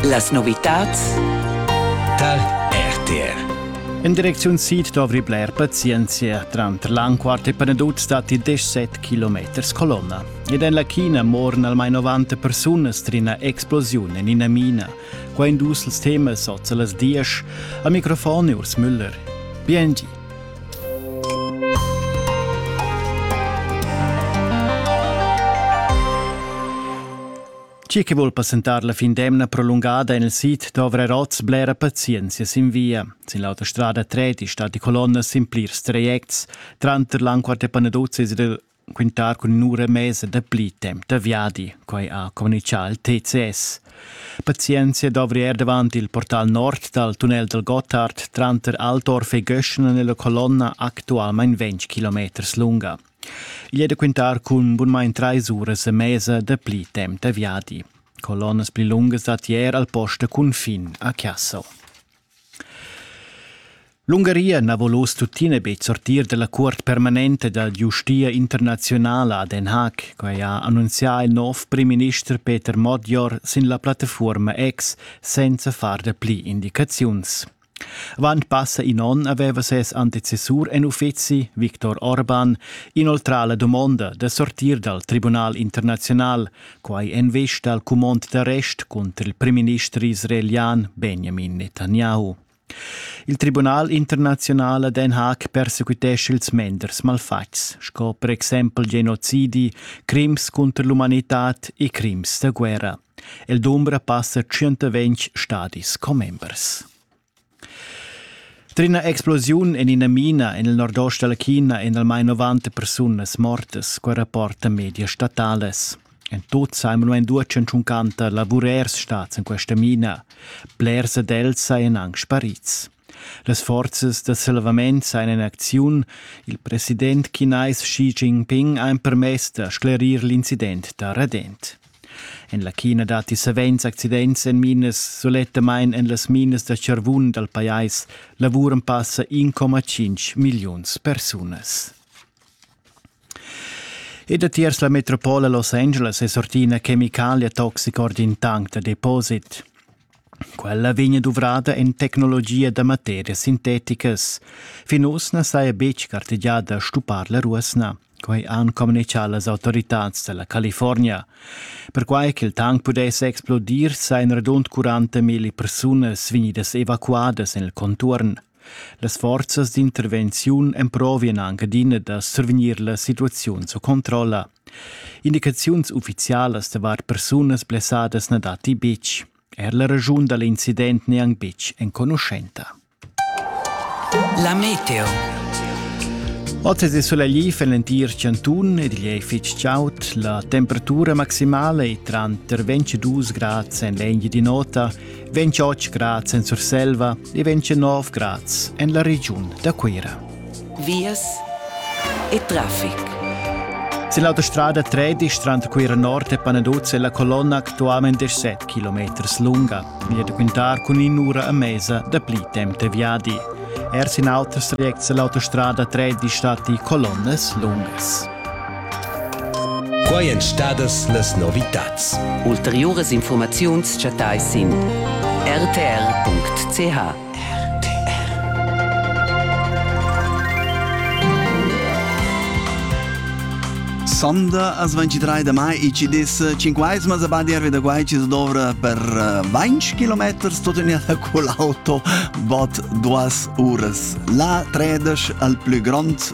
Las novitads dal RTR in direcziun sid dovri bler pazienzia. Tranter l'Anquart e Panaduz datti 17 km colonna. Ed en la China moran almain 90 persunas tras ina explosiun en ina mina. Quai in dus temas oz a las 10. Al microfon è Urs Müller. Biengi. Chi che vuol passentar la fin d'emna prolungada en il sit dovra rots blera pazienzia sin via. Sin l'autostrada treti sta di colonnas sin plirs trajects, tranter l'Anquart e Panaduzis ed il quintar cun ün'ura e mesa da pli temp da viadi, quai ha communichà il TCS. Pazienzia dovri er davant il portal nord dal tunnel dal Gottard tranter Altorf e Göschna nella colonna actualmain 20 km lunga. Igl è da quintar cun bunmain trais uras e mesa da pli temp da viadi. Colonnas pli lungas dat ier al post da cunfin a Chiasso. L'Ungaria na vul oz tuttina betg sortir da la cuort permanenta da giustia internaziunala a Den Haag. Quai ha annunzià il nov primminister Peter Modjor sin la plattafuorma X senza far da pli indicaziuns. Avant passa in onn aveva ses antecessur en uffizi, Viktor Orban, inoltrà la dumonda da sortir dal Tribunal internaziunal, Quai en vesta al cumond d'arrest cunter il primminister israelian Benjamin Netanyahu. Il Tribunal internazional a Den Haag persequitesce ils menders malfatgs, sco per exempel genocidi, crims contro l'umanitad e crims da guerra. El dumbra passa 120 stadis commembers. Tra ina explosiun en ina mina en il nordost dalla China èn almain 90 persunas mortas, quai rapportan medias statalas. En tut sa mo en due tschuncanta lavurers stads en questa mina. Blers ad els sajan anc sparids. Las forzas da salvament sajan in acziun. Il president chinais Xi Jinping ha empermess da sclerir l'incident da radent. En la china datti savens accidents en minas, sulettamain en las minas da charvun dal pajais lavuran passa 1,5 milliuns persunas. E datiers la metropola Los Angeles è sortina Chemicalia Toxic ord in tank da deposit. Quella vegn duvrada en tecnologia da materias sinteticas. Fin oz na saja betg gartegià da stuppar la ruosna. Quai han communichà las autoritads da la California. Perquai ch'il tank pudess explodir sajan radund 40.000 persunas vegnidas evacuadas en il conturn. Las forzas d'intervenziun emprovien anc adina da survegnir la situaziun sco controlla. Indicaziuns ufficialas davart persunas blessadas na datti betg. Er la raschun da l'incident n'è anc betg enconuschenta. La meteo. Oz è sulegl en l'entir cantun ed igl è fitg chaud. La temperatura maximala è tranter 22 grads en l'eglia di nota vegn 8 grads en Surselva e vegn 9 grads en la regiun da Cuira. Vias e traffic. Sin l'autostrada 13 tranter Cuira Nord e Panaduz è la colonna actualment 17 km lunga e è da quintar cun in'ura a mesa da pli temp viadi. Er sin autras trajects è l'autostrada 13 stati colonnas lungas. Quai èn stadas las novitads. Ulteriuras infurmaziuns chattais sin rtr.ch. Sonda as 23 de mai e ci dis cinquaesmas a Badia da Guai ci dovra per 20 km totenir con l'auto bot duas uras. La tredes al plü grond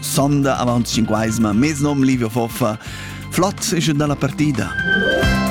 sonda avant 5 mez nom Livio Foffa. Flot ische dalla partida.